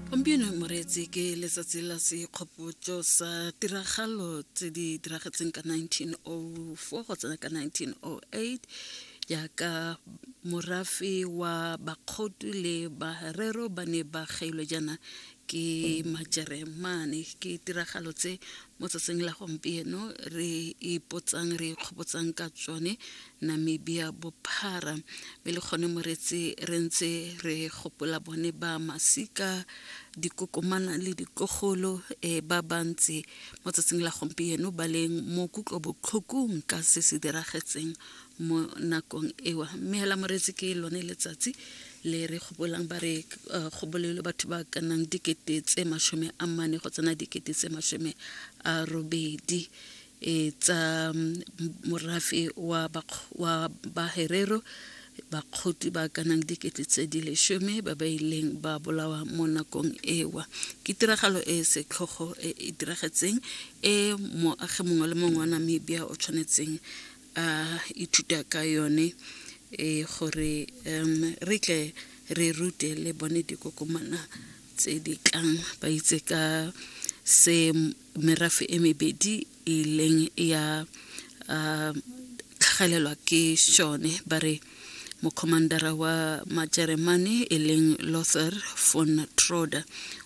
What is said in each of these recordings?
gompieno moreetsi ke letsatsi la sekgopotso sa tiragalo tse di diragetseng ka 1904 go tsena ka 1908 jaaka morafe wa bakgotu le barero ba ne ba gailwe jaana ke majeremane ke tiragalo tse mo tsatsing la gompieno re ipotsang re ikgopotsang ka tsone Namibia bophara be le gone moretse re ntse re gopola bone ba masika dikokomana le ditlogolo e ba bantsi mo tsatsing la gompieno ba leng mo kutlo botlhokong ka se se diragetseng mo nakong ewa mme hela moretse ke lone letsatsi le re gopolang ba re uh, gobolelo batho ba ka nnang dikete tse masome a mane go tsena dikete tse masome a robedi e tsa morafe wa wa baherero bakgotli ba ka nang dikete tse di leshome ba ba ileng ba bolawa mo nakong ewa ke tiragalo e e setlhogo e e diragetseng e moagi mongwe le mongwe wa namibia o tshwanetseng a ithuta ka yone e gore um re tle re rute le bone dikokomana tse di tlang ba itse ka se merafe e mebedi e leng ya uh, tlhagelelwa ke shone ba re mokhomandara wa majeremane e leng lother von troder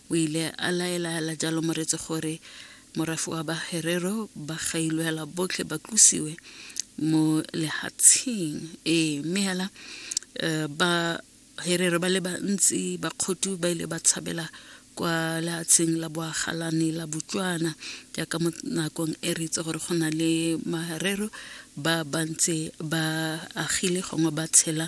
o ile a laelaela jalo moretse gore morafe wa baherero ba gailwela botlhe ba tlosiwe mo lehatsheng ee mme hela um ba Herero ba le bantsi bakgotu ba ile ba tshabela kwa leatsheng la boagalane la Botswana jaaka mo nakong e re itse gore go na le marero ba bantse ba agile gongwe ba tshela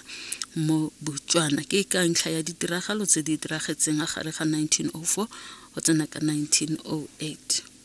mo Botswana ke ka ntlha ya ditiragalo tse di diragetseng a gare ga 1904 go tsena ka 1908